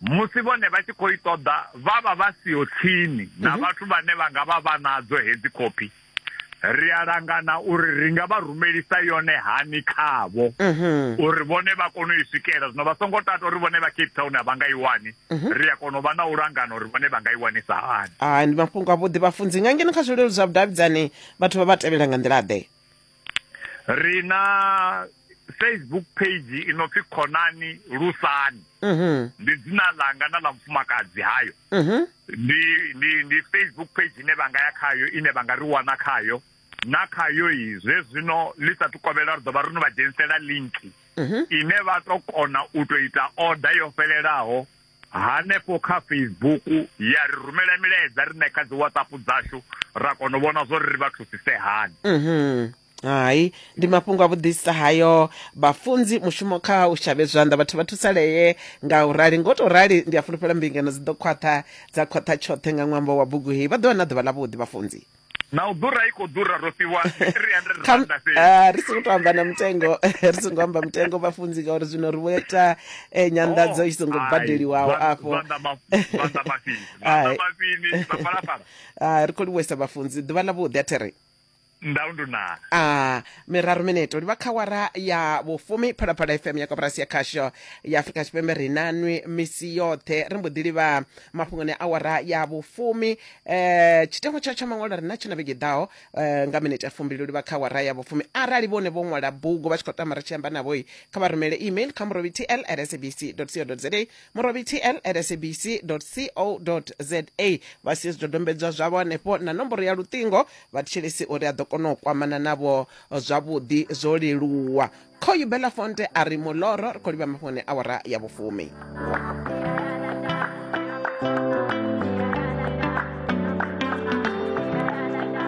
musi vhone vha tshi khou i ṱoḓa vha vha vha siho tsini na mhm. vhathu vhane vha nga vha vha nadzo hedzi khophi ri a langana uri ri nga vha rumelisa yone hani khavho mhm. uri vhone vha kone u i swikela zwino vha songo tata uri vhone vha cape town a vha nga i wani mhm. ri a kona u vha na u langana uri vhone vha nga i wanisa hani hai ndi mafhungo avhuḓi vhafunzi nga ngeno kha zwileludzi zwa vhudavhidzani vhathu vha vha tevhela nga nḓila ḓe ri na facebook page i no pfi khonani lusani mm -hmm. ndi dzina ḽanga na ḽa mufumakadzi hayo mm -hmm. ndi, ndi, ndi facebook page ine vha nga ya khayo ine vha nga ri wana khayo na khayo i zwe zwino ḽi sa tukovhela ri ḓo vha ri no vha dzhenisela linki mm -hmm. ine vha to kona u to ita order yo fhelelaho hanefho kha Facebook ya ri rumela milaedza rine kha dzi WhatsApp dzashu ra kona u vhona zwo ri vha thusise hani mhm hai ndi mafhungo a vhuḓisa hayo vhafunzi mushumo kha u shavhe zwanḓa vhathu vha thusalee nga u rali ngo to rali ndi a fulufhela mbingano dzi ḓo khwaṱha dza khwaṱha tshoṱhe nga ṅwambo wa bugu heyi vha ḓo vha na ḓuvha ḽa vhuḓi vhafunzi na u ḓura i khou ḓura ro fhiwa 300 Kha- randa fhedzi ah, ri songo to amba na mutengo ri songo amba mutengo vhafunzi ngauri zwino ri vho ita eh, nyanḓadzo i songo Oh, badeliwaho ai, afho zwanḓa ma- zwanḓa mafini Ai. zwanḓa mafini mapalapala Ah, ri khou livhuwesa vhafunzi ḓuvha ḽa vhuḓi a there ndau ndunana a miraru mineto livha kha wara ya vhufumi phalaphala fm ya koporasi ya khasho ya afurika tshipembe ri nanwi misi yoṱhe ri mbo ḓi livha mafhungoni a wara ya vhufumi eh tshitengo tsha tsha maṅwalo ri na tshina vhege ḓaho eh, nga minete ya fumbili u livha kha wara ya vhufumi arali vhone vho ṅwala bugu vha tshi khou tama ri tshi amba navhoi kha vha rumele email kha murobi tl at sabc co za murobi tl at sabc co za vha sie zwidodombedzwa zwavho hanefho na nomboro ya luṱingo vha thetshelesi uri a ḓo kona u kwamana navho zwavhuḓi zwo leluwa Khoyu Belafonte a ri muloro ri khou livha mafhone awara ya vhufumi.